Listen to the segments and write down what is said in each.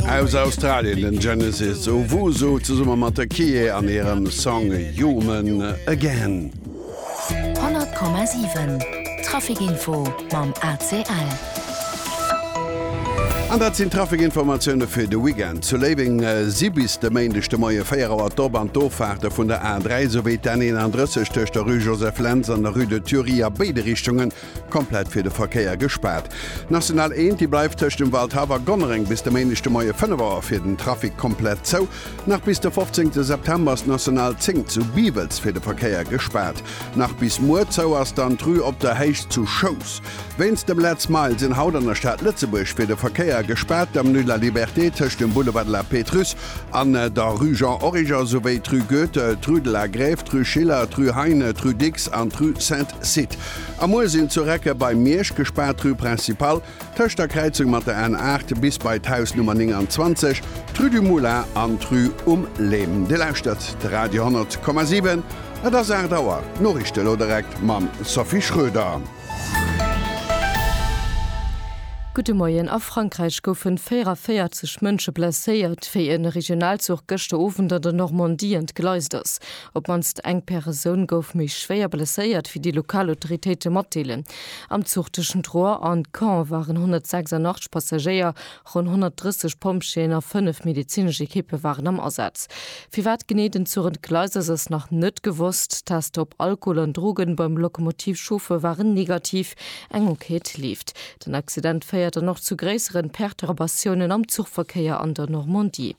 Aus Australien den Genesis, Owusu zesummen mat de Kee an hirem Song Human Again. 100,7 Traffic Info mam ACL. An dat sinn d'Trafikinformatioune fir de Weekend. Zu Léiweng si bis de Méindeg de Moie 4 Auer d'Op an d'Offaarte vun der A3 souwéi d'N 31 tëscht der Rue Joseph Lentz an der Rue de Thury a béide Richtunge komplett fir de Verkéier gespaart. D'National 1, déi bleift tëscht dem Waldhaff a Gonnereng bis de Méindeg de Moie 5 Auer fir den Trafic komplett zou. Nach bis de 15 September ass d'National 10 zu Biwels fir de Verkéier gespaart. Nach bis muer zou ass dann d'Rue Op der Héicht zu Schous. Wéinst dem Lead Smile sinn haut an der Stad Lëtzebuerg fir de Verkéier gespaart d'Avenue de la Liberté tëscht dem Boulevard de la Pétrusse an der Rue Jean Origer, souwéi d'Rue Goethe, d'Rue de la Grève, d'Rue Schiller, d'Rue Heine, d'Rue Dicks an d'Rue Sainte-Sythe. A muer sinn zu Recken bei Miersch gespaart d'Rue Principale tëscht der Kräizung mat der N 8 bis bei d'Haus Nummer 29, d'Rue du Moulin an d'Rue um Lem. Dir lauschtert de Radio 10,7. Et ass 8 Auer. D'Noriichte lo direkt mam Sophie Schröder. Gudde Moien, A Frankräich goufen 44 Mënsche blesséiert, wéi en Regionalzuch gëschter Owend an der Normandie entgleist ass. Op d'mannst eng Peresoun gouf méi schwéier blesséiert, wéi déi lokal Autoritéite matdeelen. Am Zuch tëschent Rouen an Caen waren 186 Passagéier Ronn 130 Pompjeeën a fënnef medezinesch Ekippe waren am Asaz. Firwat genee den Zuch entgleist ass, ass nach net gewosst. D'Tester op Alkohol an Drogen beim Lokomotivchauffeur waren negativ. Eng Enquête leeft. Den Accident féiert dann och zu gréisseren Perturbatiounen am Zuchverkéier an der Normandie.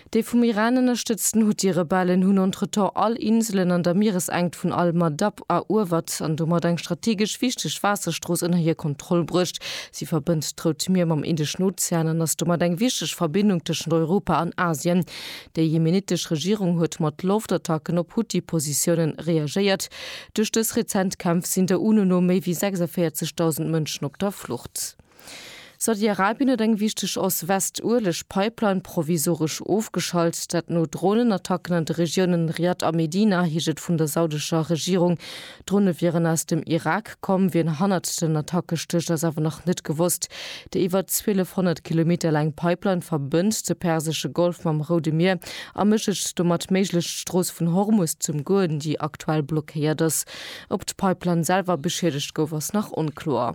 Déi vum Iran ënnerstëtzten Huthi-Rebellen hunn entretemps all Inselen an der Mieresenkt vun al-Madab eruewert an domat eng strategesch wichteg Waasserstrooss ënner hir Kontroll bruecht. Si verbënnt d'Rout Mier mam Indeschen Ozean an ass domat eng wichteg Verbindung tëschent Europa an Asien. Déi jemenitesch Regierung huet mat Loftattacken op Huthi-Positiounen reagéiert. Duerch dës rezent Kämpf sinn der UNO no méi wéi 46.000 Mënschen op der Flucht. Saudi-Arabien huet eng wichteg Ost-West-Ueleg-Pipeline provisoresch ofgeschalt, dat no Dronenattacken an de Regiounen Riad a Medina, heescht et vun der saudescher Regierung. D'Drone wieren aus dem Irak komm. Wien hannert den Attacke stécht, ass awer nach net gewosst. Déi iwwer 1.200 Kilometer laang Pipeline verbënnt de persesche Golf mam Roude Mier a mécht et domat méiglech, d'Strooss vun Hormus z'ëmgoen, déi aktuell blockéiert ass. Ob d'Pipeline selwer beschiedegt gouf, ass nach onkloer.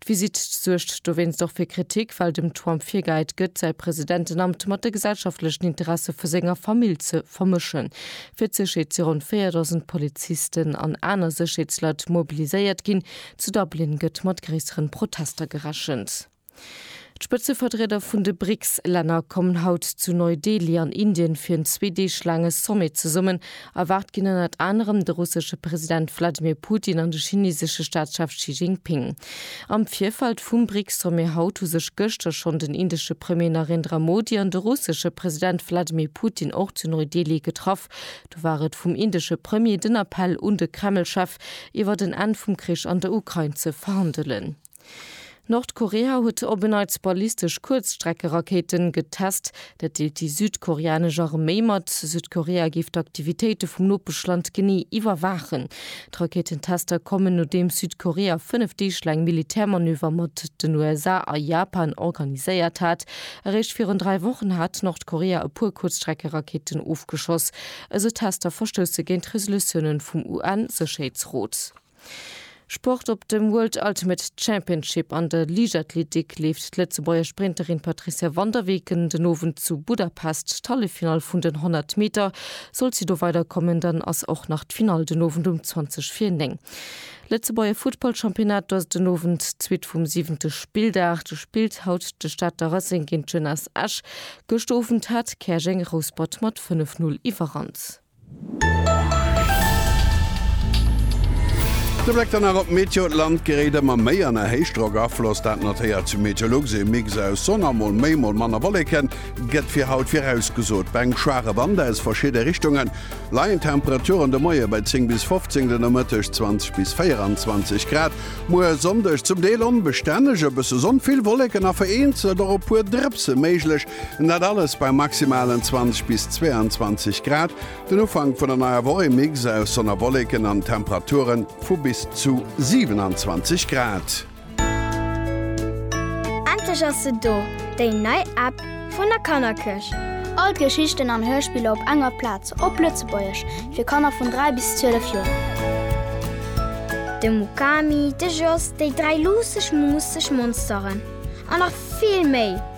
D'Visitt suergt dowéinst och fir Kritik, well dem Trump virgehäit gëtt, säi Presidentenamt mat de gesellschaftlechen Interesse vu senger Famill ze vermëschen. Fir d'Sécherheet si ronn 4.000 Polizisten an aner Sécherheetsleit mobiliséiert ginn. Zu Dublin gëtt mat gréisseren Protester gerechent. D'Spëtzeverdrieder vun de BRICS-Länner kommen haut zu Neu-Delhi an Indien fir en zwee Deeg laange Sommet zesummen Erwaart ginn ënnert anerem de russesche President Wladimir Putin an de chinesesche Staatschef Xi Jinping. Am Virfeld vum BRICS-Sommet haut hu sech gëschter schonn den indesche Premier Narendra Modi an de russesche President Wladimir Putin och zu Neu-Delhi getraff. Do war et vum indesche Premier den Appell un de Kreml-Chef, iwwert en Enn vum Krich an der Ukrain ze verhandelen. Nordkorea huet op en Neits ballistesch Kuerzstreckerakéiten getest. Dat deelt déi südkoreanesch Arméi mat. Südkorea géif d'Aktivitéite vum Nopeschland genee iwwerwaachen. D'Rakéitentester kommen, nodeems Südkorea fënnef Deeg laang Militärmanöver mat den USA a Japan organiséiert hat. Eréischt virun dräi Wochen hat Nordkorea e puer Kuerzstreckerakéiten ofgeschoss. Esou Tester verstousse géint Resolutiounen vum UN-Sécherheetsrot. Sport Op dem World Ultimate Championship an der Liichtathletik leeft d'Lëtzebuerger Sprinterin Patricia Van der Weken den Owend zu Budapest d'Halleffinall vun den 100 Meter. Sollt si do weiderkommen, dann ass och nach d'Finall den Owend um 20 vir 9. Lëtzebuerger Futtballchampionnat Do ass den Owend d'Suite vum siwente Spilldag. Do spillt haut de Stater Racing géint d'Jeunesse Esch. Gëscht Owend hat Käerjeng Rouspert mat 5 Null Iwwerhand. De Bléck dann nach op d'Meteo, D'Land geréit ëmmer méi an e Héichdrockafloss. Dat notéiert Meteolux, ee Mix aus Sonn a mol méi mol manner Wolleke gëtt fir haut virausgesot. Bei engem schwaache Wand aus verschidde Richtunge leien d'Temperaturen de Moie bei 10 bis 15, den Nomëtteg 20 bis 24 Grad. Muer e Sonndeg, zum Deel onbestänneg, e bësse Sonn, vill Wolleken a vereenzelt och e puer Drëpse méiglech. An dat alles bei maximalen 20 bis 22 Grad. Den Ufank vun der neier Woch, ee Mix aus Sonn a Wolleken an Temperature vu bis zu 27 Grad. Endlech ass se do, déi nei App vun der Kannerkirch! All d'Geschichten an Hörspiller op enger Plaz, op Lëtzebuergesch, fir Kanner vun 3 bis 12 Joer. De Mukami, de Jos, déi dräi luusseg, muusseg Monsteren an nach vill méi!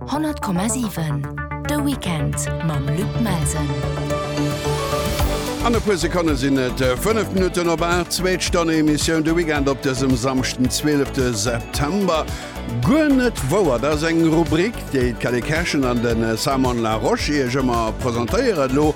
100,7 De Weekend mam Luc Melsen. An e puer Sekonne sinn et 5 äh, Minutten op Bar zweet Stonne Emissioun de Weekend op dësem samchten 12. September. Guer net wouer ass eng Rubrik, déi d'Kelly Cashen an den äh, Simon La Roche iech ëmmer presentéieren lo.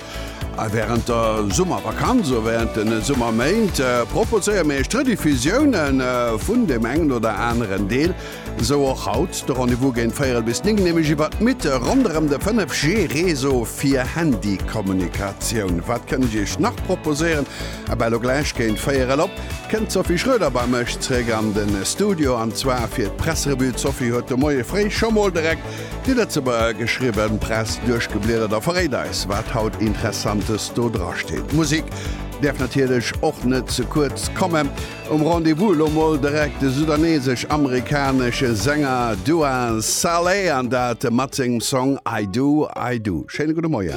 A äh, während der Summervakanz ou während den Summerméint proposéier mir eech d'Rediffusiounen vun dem engen oder aneren Deel Esou och haut de Rendez-vous géint véierel bis néng, nämlech iwwert d'Mythe ronderëm de 5G Réseau fir Handykommunikatioun. Wat kënnt ech Iech nach proposéieren? A ben elo gläich géint véierel op kënnt d'Sophie Schroeder bei mech zréck an de Studio an zwar fir d'Pressrevue. D'Sophie huet de Moie fréi scho mol direkt déi Lëtzebuerger geschriwwen Press duerchgebliedert a verréit eis wat haut Interessantes do drasteet. D'Musik däerf natierlech och net ze kuerz kommen. Um Rendez-vous elo mol direkt de sudanesesch-amerikanesche Sänger Dua Saleh, an dat mat sengem Song I Do, I Do. Schéine gudde Moien.